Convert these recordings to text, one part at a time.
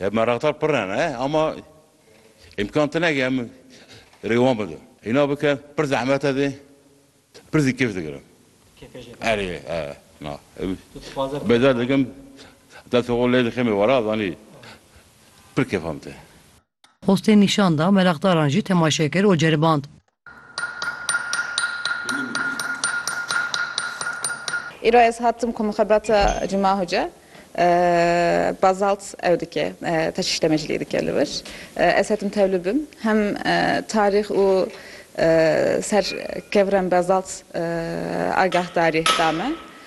Ev meraqdar pir ne ne ama îmkan tine ke em rêwan bidin. Îna bike pir zehmet e dê, pir zî kêf digirin. Kêfê jê re. Erê e na. Tu dixwaze bike. Bêder dikim destê xwe lê dixê mêwara zanî pir kêfam tê. Xwestên nîşan da, meraqdaran jî temaşe kir û ceriband. Îro ez hatim ku mixebata Cuma Hoca Bazalt ew dike, teşîştemecilî dike li wir. Ez hetim tev li bin. Hem tarîx û ser kevirên Bazalt agahdarî da me.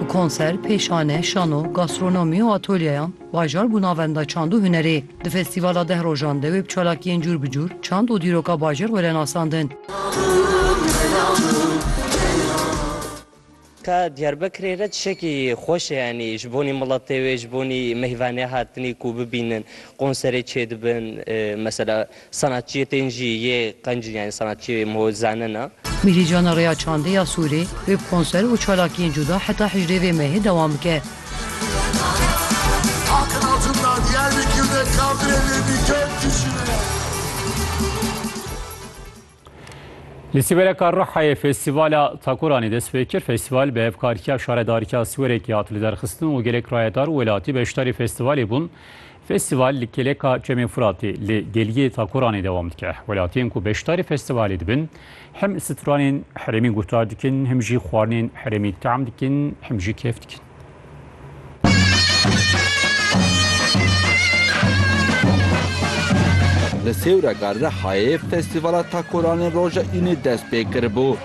Bi konser, pêşane, şano, gastronomî û atolyeyan, bajar bû navenda çand û hunerê. Di festîvala deh rojan de wê bi çalakiyên cûr bi cûr çand û dîroka bajêr were nasandin. Ka Diyarbekirê re tişekî xweş e yanî ji bonî miletê wê, ji bonî meyvanê hatinî ku bibînin konserê çêdibin mesela sanatçiyê tên jî yê qencin yanî sanatçiyê wê ho zanin a. Mîhîcana Rêya Çandê ya Sûrê wê bi konser û çalakiyên cuda heta hejdê vê mehê dewam bike. Li Sîwereka Rihayê Festîvala Takoranê dest pê kir. Festîval bi hevkariya şaredarîya Sîwerekê hat lidarxistin û gelek rayedar û welatî beşdarî festîvalê bûn. Festîval li Kêleka Çemê Furatê li Geliyê Takoranê dewam dike. Welatiyên ku beşdarî festîvalê dibin him stranên herêmî guhdar dikin, him jî xwarinên herêmî team dikin, him jî kêf dikin. Li Sêwrega Rihayê Festîvala Takoranên Roja Înê dest pê kiribû.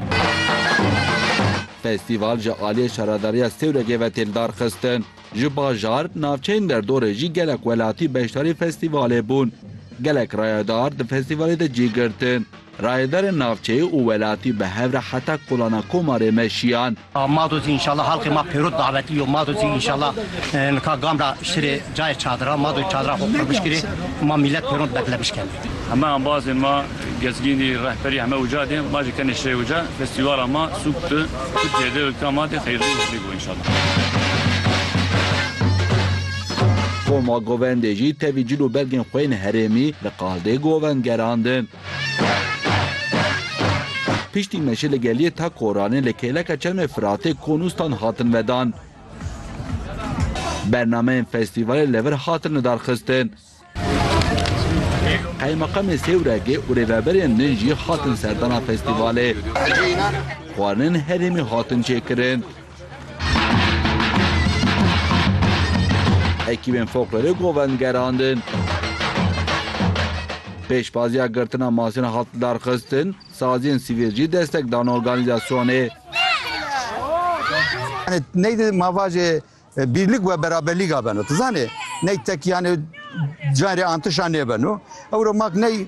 Festîval ji aliyê Şaredariya Sêwregê ve tên darxistin. Ji bajar, navçeyên derdorê jî gelek welatî beşdarî festîvalê bûn. Gelek rayedar di festîvalê de cî girtin. Rayedarên navçeyê û welatî bi hev re heta kolana Komarê me şiyan. A Madozî înşallah halqê ma pêro davetî yo. Madozî înşallah nika gam ra şirê cayê çadiran. Madozî çadira xo qurmiş kirê û ma mîlet pêro beklemiş kenê. Heme embazên ma, gezgînî, rehberî heme uca de. Ma jî kenê şirê uca. Festîvala ma sûk di Tirkîyê de û di Kama de xeyrlî û hîrlî bo înşallah. Koma Govendê jî tevî cil û belgên xo yên herêmî li qaldê govend gerandin. Piştî me jî li geliyê ta Koranê li kêleka çemê Firatê Konûstan hatin vedan. Bernameyên festîvalê li vir hatin lidarxistin. Qeymeqamê Sêwregê û rêveberên din jî hatin serdana festîvalê. Xwarinên herêmî hatin çêkirin. Ekîbên Foklorê Govend gerandin. Pêşbaziya girtina masîna hat lidarxistin, saziyên sivîl jî destek dan organîzasyonê. Yani ney de mavajê e, birlik ve beraberlîga beno. Tu zanê ney tek yani cayê antişa nêbeno. Ewro mak ney